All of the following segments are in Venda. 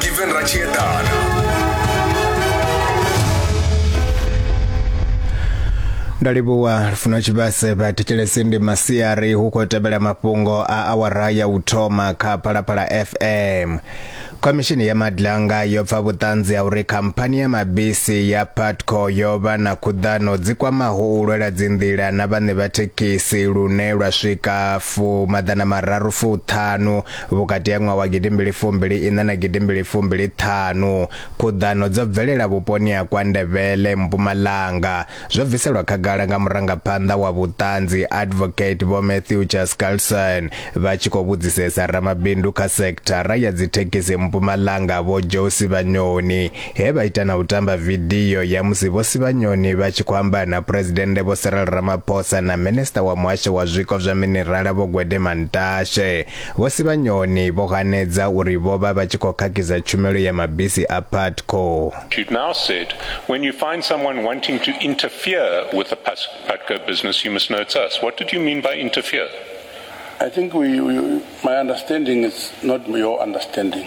Given ndalivhuwa lufuno tshivhase vha thetshelesi ndi masiari hu khou tevhela mafhungo a awara ya u thoma kha phalaphala fm khomishini ya madlanga yo pfa vhuṱanzi ha uri khamphani ya mabisi ya patco yo vha na khuḓano dzi kwamaho u lwela dzinḓila na vhaṋe vha thekhisi lune lwa swika fu maḓana mararu fuṱhanu vhukati ha ṅwaha wa gidimbili fumbili iṋa na gidimbili fumbili ṱhanu khuḓano dzo bvelela vhuponi ha kwa ndevhele mpumalanga zwo bviselwa khagala nga murangaphanḓa wa vhuṱanzi advocate vho matthew jascarlson vha tshi khou vhudzisesa ramabindu kha sekithara ya dzithekhisi mpumalanga vho josi vhanyoni He vha ita na u tamba vidio ya musi Vho Sibanyoni vha tshi khou amba na Phresidennde Vho Cyril Ramaphosa na Minisita wa Muhasho wa Zwiko zwa Minirala Vho Gwede Mantashe. Vho Sibanyoni vho hanedza uri vho vha vha tshi khou khakhisa tshumelo ya mabisi a Putco. You've now said when you find someone wanting to interfere with the Putco business, you must know it's us. What did you mean by interfere? I think we, we, my understanding is not your understanding.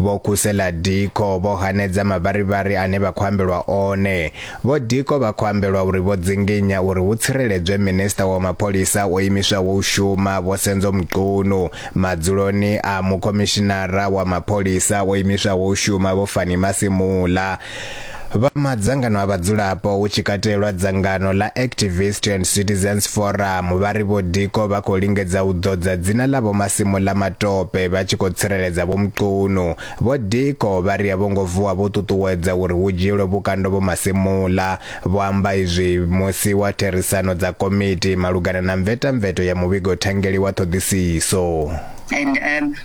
Vho Kusela Diko vho hanedza mavharivhari ane vha khou ambelwa one. Vho Diko vha khou ambelwa uri vho dzinginya uri hu tsireledzwe Minisiṱa wa Mapholisa o imiswaho u shuma Vho Senzo Mchunu madzuloni a Mukhomishinara wa Mapholisa o imiswaho u shuma Vho Fannie Masemola Vha madzangano a vhadzulapo hu tshi katelwa dzangano ḽa Activist and Citizens Forum vha ri Vho Diko vha khou lingedza u ḓodza dzina ḽa Vho Masimu ḽa matope vha tshi khou tsireledza Vho Mchunu. Vho Diko vha ri a vho ngo vuwa vho ṱuṱuwedza uri hu dzhielwe vhukando Vho Masimula. Vho amba izwi musi wa therisano dza komiti malugana na mvetamveto ya muvhigo thangeli wa ṱhoḓisiso. And um,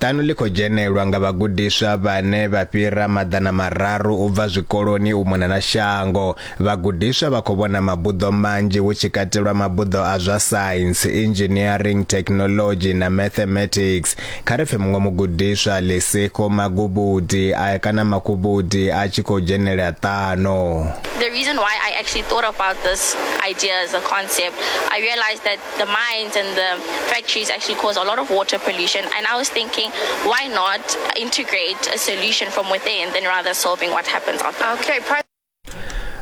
Ṱanu ḽi khou dzhenelwa nga vhagudiswa vhane vha fhira maḓana mararu u bva zwikoloni u mona na shango. Vhagudiswa vha khou vhona mabuḓo manzhi hu tshi katelwa mabuḓo a zwa Science, Engineering, Technology na Mathematics. Kha ri pfe muṅwe mugudiswa Lesekho Magubudi a kana Makhubudi a tshi khou dzhenela ṱano. The reason why I actually thought about this idea as a concept, I realized that the mines and the factories actually cause a lot of water pollution. And I was thinking, why not integrate a solution from within than rather solving what happens out there? Okay, price.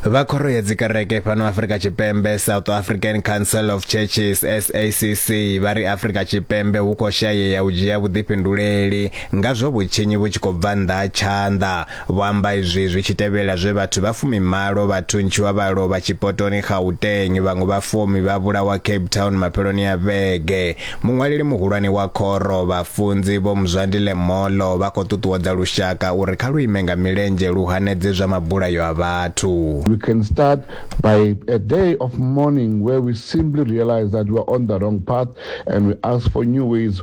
vha khoro ya dzikereke fhano afrika tshipembe south african council of churches sacc vha ri afrika tshipembe hu khou shayea u dzhia vhuḓifhinduleli nga zwo vhutshinyi vhu tshi khou bva nnḓa ha tshanḓa Vho amba izwi zwi tshi tevhela zwe vhathu vha fumimalo vha thuntshiwa vha lovha tshipotoni Gauteng, vhaṅwe vha fumi vha vhulawa Cape Town mafheloni a vhege. Muṅwaleli muhulwane wa khoro, vhafunzi, Vho Mzwandi Lemolo, vha khou ṱuṱuwedza lushaka uri kha lu ime nga milenzhe lu hanedze zwa mabulayo a vhathu. We can start by a day of mourning where we simply realize that we are on the wrong path and we ask for new ways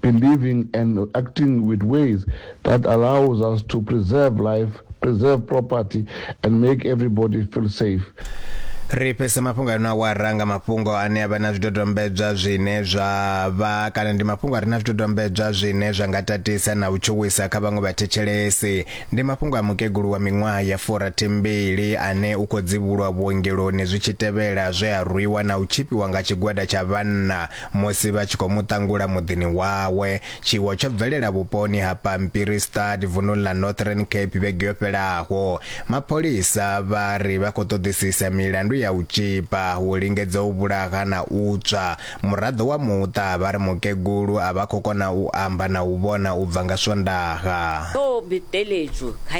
believing and acting with ways that allows us to preserve life, preserve property, and make everybody feel safe. ri fhese mafhungo ano a wara nga mafhungo ane a vha na zwidodombedzwa zwine zwa vha kana ndi mafhungo a re na zwidodombedzwa zwine zwa nga tatisa na u tshuwisa kha vhaṅwe vhathetshelesi ndi mafhungo a mukegulu wa miṅwaha ya forathimbili ane u khou dzivhulwa vhuongeloni zwi tshi tevhela zwe a rwiwa na u tshipiwa nga tshigwada tsha vhanna Musi vha tshi khou mu ṱangula muḓini wawe, tshiwo tsho bvelela vhuponi ha Pampierstad vununi ḽa Northern Cape vhege yo fhelaho. Mapholisa vha ri vha khou ṱoḓisisa milandu ya u tzhipa, u lingedza u vhulaha na u tswa. Muraḓo wa muṱa vha ri mukegulu a vha khou kona u amba na u vhona u bva nga Swondaha.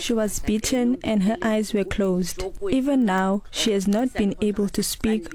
She was beaten and her eyes were closed. Even now, she has not been able to speak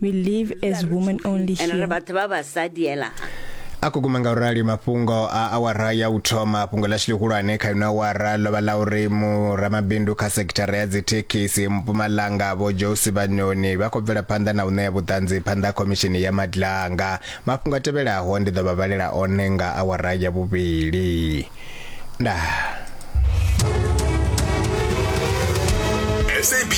We live as women only ende ri here. vhathu vha vhasadi hela ha a khou guma nga u rali mafhungo a awara ya u thoma fhungo ḽashu ḽihulwane kha ino awara ḽo vha ḽa uri muramabindu kha sekithara ya dzithekhisi mpumalanga vho josi vhanyoni vha khou bvela phanḓa na u ṋea vhuṱanzi phanḓa ha khomishini ya madlanga mafhungo a tevhelaho ndi ḓo vha vhalela one nga awara ya vhuvhili ndaa SABC